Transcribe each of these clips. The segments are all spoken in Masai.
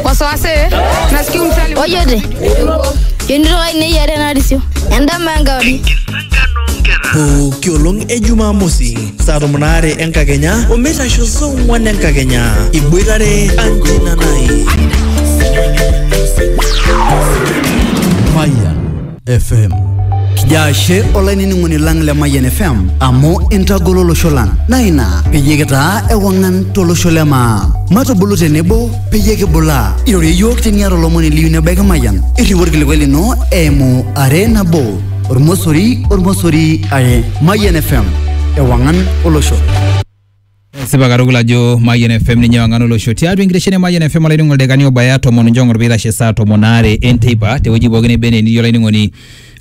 wasiwasi nasikia mtali ojote yonitoka ine yiare narisio endama enkauri pooki olong e jumamosi saa tomon aare enkakenya omeitasho saa ong'wan enkakenya iboitare anjinanai Mayan FM. Kijaashe olainining'oni lang le Mayian FM amu intagolo olosho lang naa ina peyie kitaa ewang'an tolosho le maa. Matubulu tenebo peyie kibulaa. Irorie iyiook teniata olomoni liyu nebaiki Mayian. Irriu orkilikuai lino eimu are nabo ormosori ormosori are Mayian FM ewang'an olosho. Esipa katukul ajo Mayian FM ninye wang'an olosho tiatua enkitesheni e Mayian FM olainining'oni oldakani obaya tomon njong'or piitashe saa tomon aare enteipa tewueji pookin neba enaa enitii olainining'oni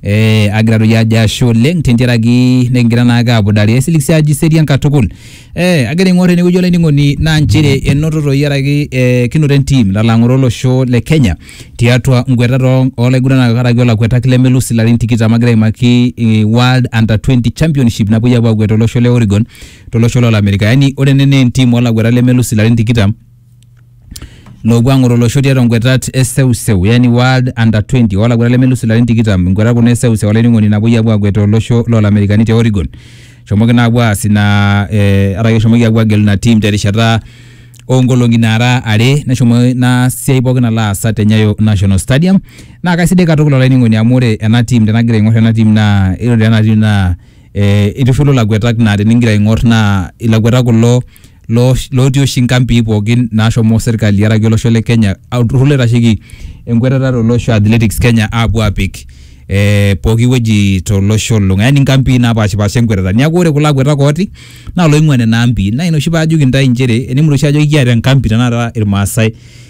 eh, agira doi ajo ashe oleng tentiaraki nikingira naake apudare esilik sii ajo iserian katukul eh, agira aing'or enewueji olainining'oni naa nchere enoto toi araki eh, kinoto entim nalo ang'oroo olosho le Kenya tiatua nkuetat oo- olaiguranak araki olakuetak lemelus ilarin tikitam agira aimaki eh, World Under 20 Championship napuoi apuo akwet tolosho le Oregon tolosho lo Amerika. Yaani ore ene naa entim olaguetak lemelus ilarin tikitam loopuo ang'oru olosho tiatua ngwetat e seuseu yaani World Under 20 olaguetak lemelus ilarin tikitam ngwetat kuna e seuseu olainining'oni napuoi apuo agwet tolosho lo Lamerikani te Oregon. Eshomoki naa apuo aas ina eh araki eshomoki apuo agelu ina tim terishata oo nkolong'i naara are neshomo ina siai pookin alo aasa te Nyayo National Stadium. Naa kaisidai katukul olainining'oni amu ore ena tim tenagira aing'or ena tim naa ore ena tim naa eh, itushulu laguetak naa tenigira aing'or naa ilaguetak kulo loo- lootii oshi nkampii pookin naashomo serkali araki olosho le Kenya olturrur loitasheki enkuetata tolosho Athletics Kenya aapuo aapik eh, pooki wueji tolosho olulung'a yaani nkampii naapashipasha enkuetata niaku ore kulo aguetak ooti naa loing'ua nena ampii naa ina oshi paajoki intae inchere enimut oshi ajo ikiata enkampi tenakata irmaasai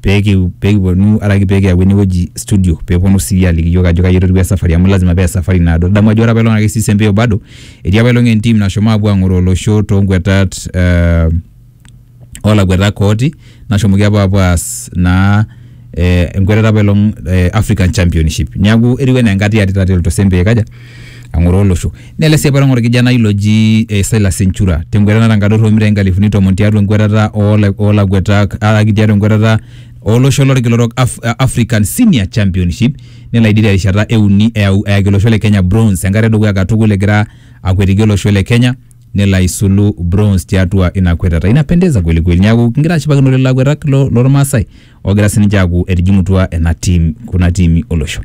peekiponu araki peekiyau enewueji studio peeponu sii aliki iyiok ajo kaji etotiwua esafari amu lazima paa esafari naado. Idamu ajo ore apaelong' ake sii Sempeo bado etii apaelong' entim nashomo aapuo ang'oroo olosho toonkuetat ee olakuetak ooti nashomoki apa apuo aas naa ee enkuetata apaelong' ee African Championship. Neeku etiu enaa enkatiarit atereto Sempeo aikaja? ang'oroo olosho. Nele sii apailong orkijanai loji eh, Silas Enchura tenkwetata natangador omitai nkalifuni tomon tiatua enkwetata oola- oolakuetak araki tiatua enkwetata olosho lorkila orok Af eh, African Senior Championship nelo aidip terishata e uni eyau eyaki olosho le Kenya bronze enkata edukuya katukul egira akwetiki olosho le Kenya nelo aisulu bronze tiatua ina kwetata. Inapendeza kweli kweli. Neaku kingira ashipakino lelo akuetak lo lormaasai ogira sininche aaku etijing'utua ena team kuna tiimi olosho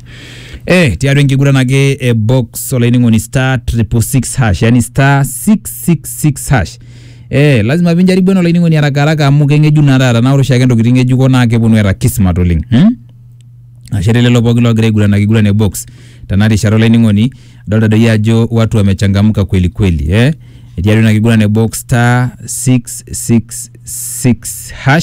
eh, tiatua enkiguran ake e box olainining'oni star 666 hash yani star 666 hash eh, lazima pinjaribu ena olainining'oni haraka haraka amu keng'ejuk naa taata naa ore oshiake ntokitin ng'ejuko naa keponu eeta kismat oleng hmm? ashe telelo pooki loogira aiguran ake iguran e box tena rishata olainining'oni adolta doi ajo watu wamechangamka kweli kweli eh? etii atua ina kiguran e box star 666 hash